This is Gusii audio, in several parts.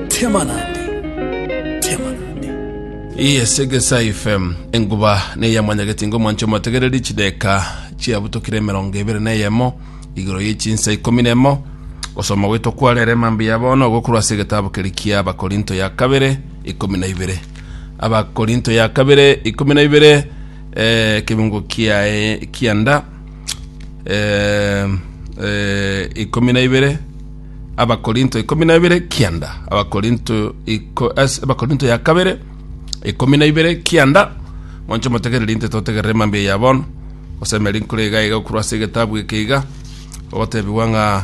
Tema nande, tema nande. Yes, Egesa FM enguba neya mwanyageti ngo mwancho motegereri chideka chiabutokire emerongo ebere na eyemo igoro ye chinsa ikomi nemo gosoma gwetwa kwarere mambi ya bono gokorwa ase egetabu keri kia abakorinto ya kabere ikomi na ibere abakorinto ya kabere ikomi na ibere eh, kebungo kiae kianda eh, eh, ikomi na ibere abakorinto ikomi na ibere kianda abakorinto iko- as- abakorinto ya kabere ikomi na ibere kianda monche motegereri nte totegerere mambi eya bono osemeri nkure iga iga okorwa ase egetabu eke iga ogotebiwa ng'a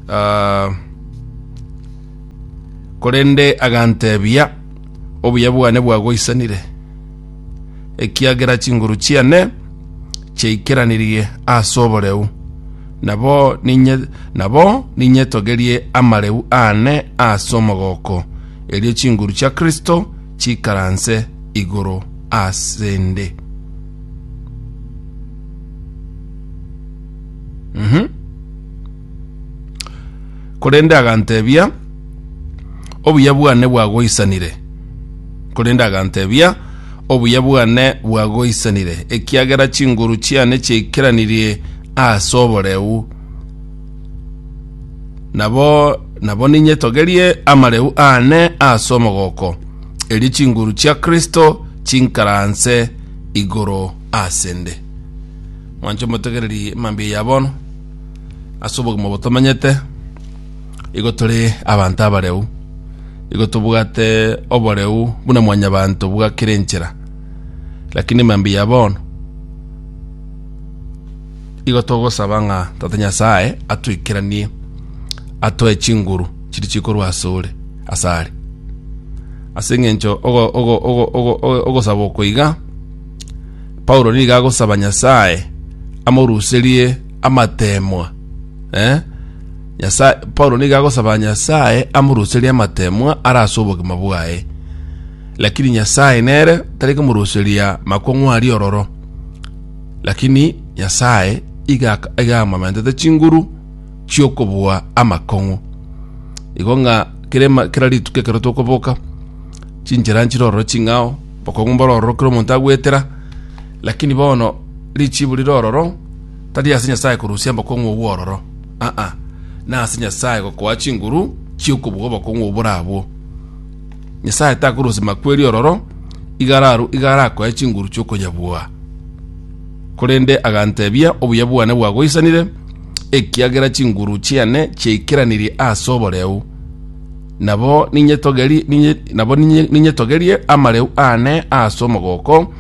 ah, korende agantebia obuya bwane bwagoisanire ekiagera chinguru chiane chaikeranirie ase oboreu, nabo ninye nabo ninyetogerie amareu aane ase omogoko, erio chinguru chia Kristo chikaranse igoro ase 'nde. Mhm. Korende aganteebia, Obuya bwane bwagoisanire. Korende aganteebia, Obuya bwane bwagoisanire, ekiagera chinguru chiane chiaikeranirie ase oboreu. Nabo nabo ninyetogerie amareu aane ase omogoko, erio chinguru chia Kristo chinkaranse igoro ase 'nde. Mwanche motegereri mambia ya bono. ase obogima obo tomenyete, igo tore abanto abareu, igo tobwate oboreu buna mwanyabanto bwa kera enchera. Lakini mambia bono, igo togosaba ng'a Tata Nyasae atweikeranie, atoe chinguru chiria chikorwa ase ore, ase are. Ase eng'encho ogo- ogo- ogo- ogo- ogo- ogosaba oko iga, Paulo nigo agosaba Nyasae amoruserie amateemwa. Eh? Nyasae, Paulo nigo agosaba Nyasae amoruserie amateemwa ara ase obogima bwaye. Lakini Nyasae nere tari komoruseria makong'u aria ororo. Lakini Nyasae iga iga amamentete chinguru chiokobua amakong'u. Igo ng'a kere ma- kera rituko ekero tokoboka chinchera nchire ororo ching'ao Okong'u mbororo kera omonto agwetera, lakini bono richiibu rire ororo tari ase Nyasae korusia mbokong'u obwo ororo, aa, nase Nyasae gokoa chinguru chi'okobua obokong'u obore abwo. Nyasae takorusia makweri ororo iga araru iga arakoe chinguru chi'okonyabua. Korende agantebia, Obuya bwane bwagoisanire, ekiagera chinguru chiane chiaikeranirie ase oboreu. Nabo ninyetogeri- ninye- nabo ninye- ninyetogerie amareu aane ase omogoko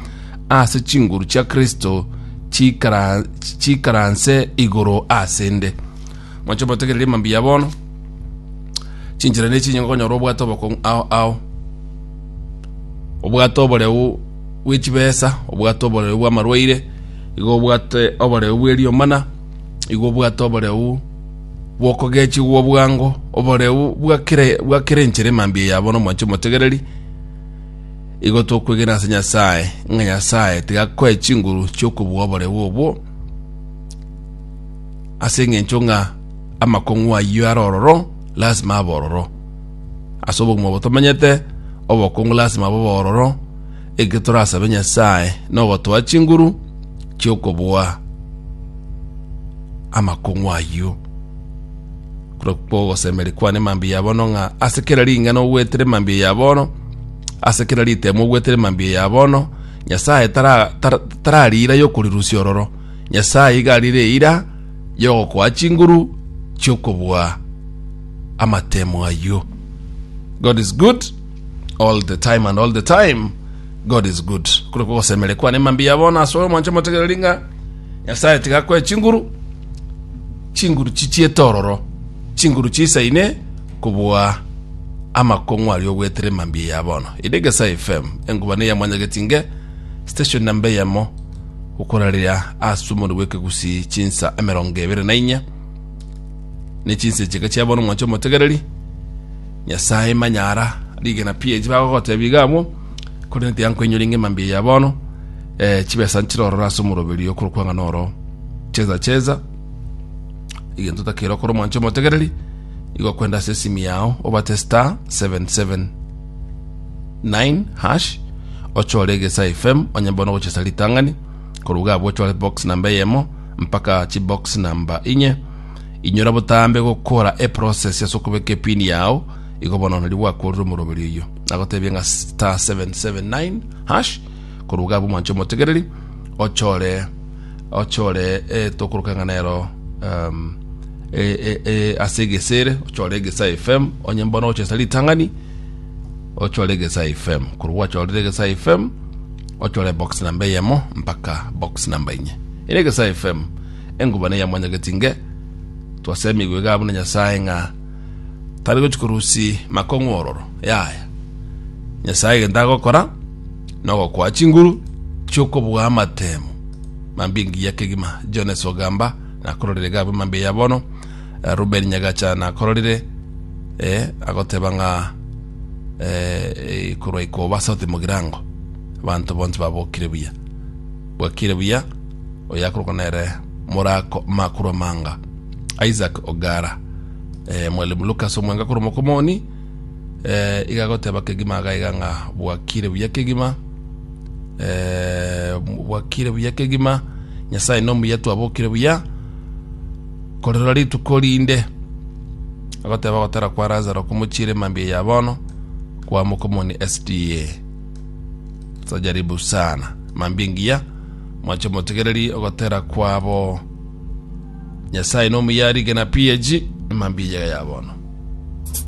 ase chinguru chia Kristo chikara- chikaranse igoro ase 'nde. Mwancha omotegererie mambia bono, chinchera nechi inye nkonyora obwate obokong'u ao ao, obwate oboreu bwe chibesa, obwate oboreu bw'amarwaire, igo obwate oboreu bw'eriomana, igo obwate oboreu bw'okogechigwa bwango, oboreu bwa kera bwa kera enchera emambia yabo n'omwancho omotegereri, igo tokwegena ase Nyasae ng'a Nyasae tigakoe chinguru chi'okobua oboreu obwo, ase eng'encho ng'a amakong'u ayio are ororo, lasima abe ororo. Ase obogima obo tomanyete, obokungu lasima bobe ororo, Ekio torasabe Nyasae nogotoa chinguru chi'okoboa amakong'u ayio. Korwa kw'ogosemeria kwane mambia ya bono ng'a ase kera ring'ana ogwetere mambia ya bono, ase kera ritemo ogwetere mambia ya bono, Nyasae tara- tara- tarari eira y'okorirusia ororo. Nyasae iga arire eira y'ogokoa chinguru chi'okoboa amatemo ayio. God is good. all the time and all the time god is good kule kugosemere kwane mambi ya bono asore omwanche motegere ringa nyasaye tigakwe chinguru chinguru chichiete ororo chinguru chisaine kubua amakong'u aria ogwetere mambi ya bono ide gesae fm engubane ya mwanyagetinge station namba eyemo gukorarira asumori bwekegusi chinsa emerongo ebere na inya ne chinsa echeke chia bono omwanche omotegereri Nyasae manyara rigena pi echi bagogotebia iga abwo, korende tiankoinyori ngema mbi eya bono, eh, chibesa nchire ororo ase omoroberio kw'okwang'ana oro. Cheza cheza, egento otakere okore omwancho omotegereri, igo kwende ase esimi yao obate star 779 hash ochore egesa fm onye bono ogochesa ritang'ani koruga abwo ochore box namba eyemo mpaka chibox namba inye Inyora botambe gokora eprocess ase okobeka epin yao, igo bono nari gwakorire omoroberi oyio nagotebie ng'a star 779 hash koruga abwo mwanche omotegereri ochore ochore eh, tokoroka ng'a nero um, eh, eh, eh, ase egesere ochore egesa fm onye mbono ochesa ritang'ani ochore egesa fm koru gwachorire egesa fm ochore box namba eyemo mpaka box namba enye ere egesa fm Engubana ya mwanyageti nge, twasemigwa igaa buna Nyasae ng'a tari gochi korusi makong'u ororo. Yaya. Nyasae egento agokora nogokoa chinguru chiokobua amatemo mambia engiya kegima. Jones Ogamba nakororire igaa buna mambia ya bono. Eh, Ruben Nyagacha nakororire eh, agoteba ng'a eh, ikorwa ikoba sauti mogirango abanto bonsi babokire buya Bwakire buya, oyo akorokwa nere Morako Makuru Amanga, Isaac Ogara. Eh, Mwalimu Lucas Omwenga korwa Mokomoni, eh, iga agoteba kegima iga iga ng'a bwakire buya kegima, eh, bwakire buya kegima, Nyasaye nomuya twabokire buya, korerora rituko rinde agoteba gotara kwa Lazaro komochiire mambia ya bono kwa Mokomoni SDA. Tojaribu sana. Mambia engiya, mwanche omotegereri ogotera kwabo. Nyasaye nomuya rigena PAG, mambia eyega ya bono.